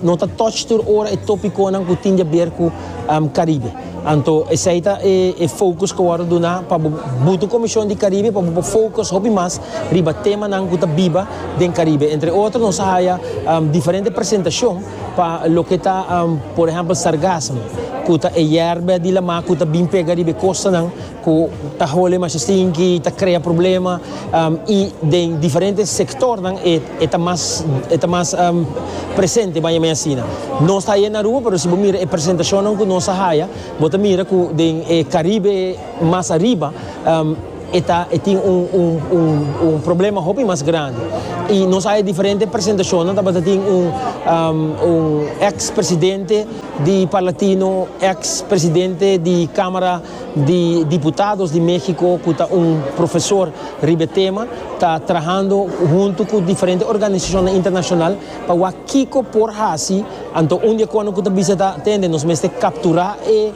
No ta touch tur ora e topiconan cu tin diaber cu Caribe. Anto esey ta e focus cu wordo duna pa bo buto Comision di Caribe pa bo por focus hopi mas riba temanan cu ta biba den Caribe. Entre otro nos a haya diferente presentacion pa loke ta por ehempel sargassum cu ta e yerba di la mar cu ta bin pega riba e costanan. cu ta hole masha stinky, ta crea problema y den diferente sectornan e ta mas e ta mas presente baña mi asina. Nos ta haya en Aruba pero si bo mira e presentacionnan cu nos a haya bo ta mira cu den e Caribe mas ariba e ta e tin un un un un problema hopi mas grandi y nos a haya diferente presentacionnan tabata tin un un ex presidente di Parlatino ex presidente di camara di diputados di Mexico cu ta un profesor riba e tema ta trahando hunto cu diferente organisacionnan internacional pa wak kico por haci, anto un di e cono cu ta bisa ta tende nos mester captura e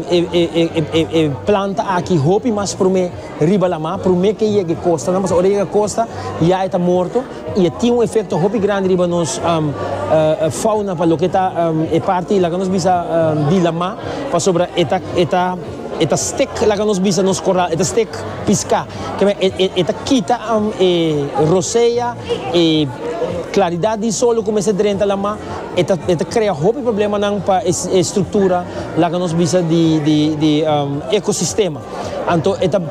e planta aki hopi mas prome riba la mar, prome ke yega e costanan, pasobra ora e yega costa ya e ta morto. y a tin un efecto hopi grandi riba nos fauna pa loke ta e parti laga nos bisa di lama pasobra e ta e ta e ta stek laga nos bisa nos coral e ta stek pisca keme e ta kita e rosea e claridad di sol lo cuminsa drenta lama e ta e ta crea hopi problemanan pa e structura laga nos bisa di di di ecosistema anto e ta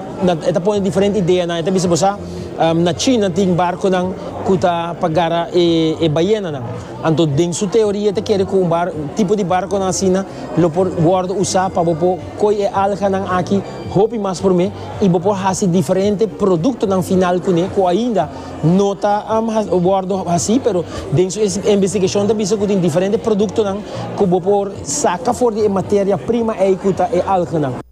e ta pone diferente ideanan e ta bisa bosa. Na China tin barconan cu ta pa gara e bayenanan. Anto den su teoria ta kere cu un tipo di barconan asina lo por wordo usa pa bo por coy e alganan aki hopi mas prome y bo por haci diferente productonan final cune cu ainda no ta wordo haci pero den su investigacion ta bisa cu tin diferente productonan cu bo por saca for di e materia prima ey cu ta e alganan.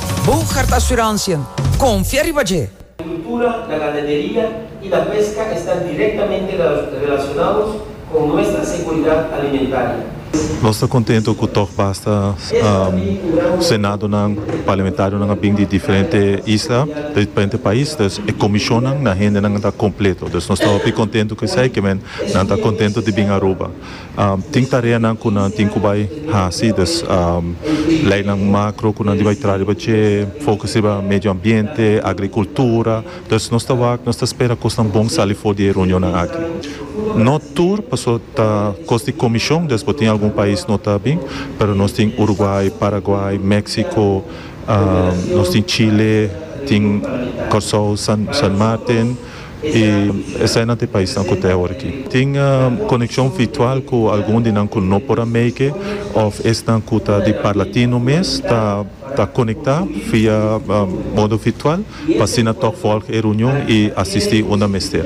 Bo hart asuransien, konfia riba dje. Kultura, la ganaderia i la peska esta direktamente relasionados kon nuestra seguridat alimentaria. Nos ta kontento ku tòg basta senadonan, parlamentarionan a bin di diferente isla, di diferente pais, dus e komishonnan na hendenan ta kompleto. Dus nos ta hopi kontento ku esei, ke men nan ta kontento di bin Aruba. Tin tareanan ku nan tin ku bai hasi, dus leinan makro ku nan di bai traha riba dje, fokus riba medio ambiente, agrikultura. Dus nos ta wak, nos ta spera kosnan bon sali for di e reunionnan aki. No tur, paso ta kos di komishon, dus bo tin algun pais no ta bin, pero nos tin Uruguay, Paraguay, Mexico, nos tin Chile, tin Kòrsou, San Martin. i esei nan ta e paisnan ku ta e hora aki. Tin konekshon virtual ku algun di nan ku no por a make òf esnan ku ta di parla tino mes ta konektá via modo virtual pa asina tòg vòlg e reunion i asistí unda mester.